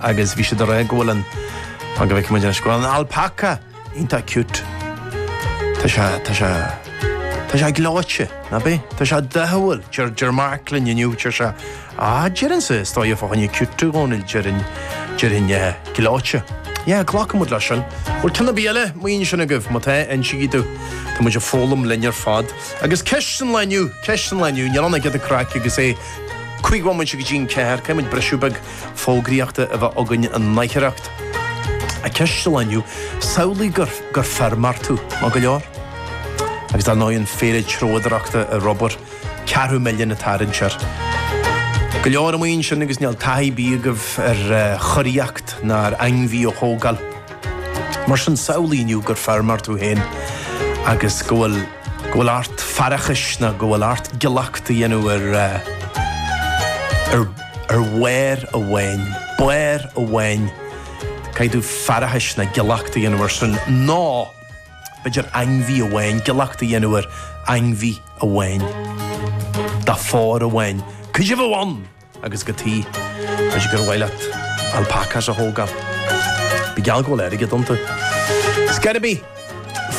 Agus bhí siad ag rá go bhfuil an, fan go bhfeice muid anois, go bhfuil an alpaca iontach cute. Tá sé, tá sé, tá sé gleoite, ná bí? Tá sé dóighiúil, deir, deir Mark linn inniu, deir sé, ah, déarfainn sa stáithe fá choinne cute, a Dhónaill, déarfainn, déarfainn, eh, gleoite. Yeah, glacaimid leis sin. Bhuel, ceann ar bith eile mar sin agaibh, má tá, insigí domh. Tá muid ag foghlaim linn ar fad. Agus ceist san lá inniu, ceist san lá inniu, níl ann ach giota craic agus é cúig bhomaite go dtí an ceathair, caithfimid briseadh beag, fógraíochta a bheith againn in aicearracht. Á, ceist an lae inniu, samhlaigh gur gur feirmeoir tú. Maith go leor? Agus ar ndóigh an fhéile treabhdóireachta ar obair, ceathrú milliún ag tarraingt air. Go leor amuigh ansin agus níl taithí ar bith agaibh ar churaíocht ná ar ainmhí a thógáil. Mar sin samhlaigh inniu gur feirmeoir tú féin agus go bhfuil. go bhfuil ort faireachais nó go bhfuil ort giollacht a dhéanamh ar bharr amháin, barr amháin, caithfidh tú faireachais nó giollacht a dhéanamh ar sin, nó b'fhéidir ainmhí amháin, giollacht a dhéanamh ar ainmhí amháin, de phór amháin. Cuid amháin! agus go T, toisc gur mhaith leat alpacas a thógáil. Mar gheall go bhfuil airgead iontu. It's gotta be!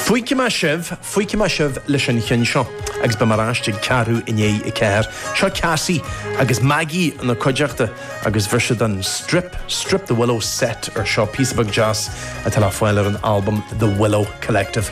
Fágfaidh mé sibh, fágfaidh mé sibh leis an cheann seo agus beidh mé ar ais ag ceathrú i ndiaidh a ceathair. Seo Cassie agus Maggie ina cuideachta agus bhaist siad an Strip, Strip the Willow set air seo, píosa beag deas atá le fáil ar an albam The Willow Collective.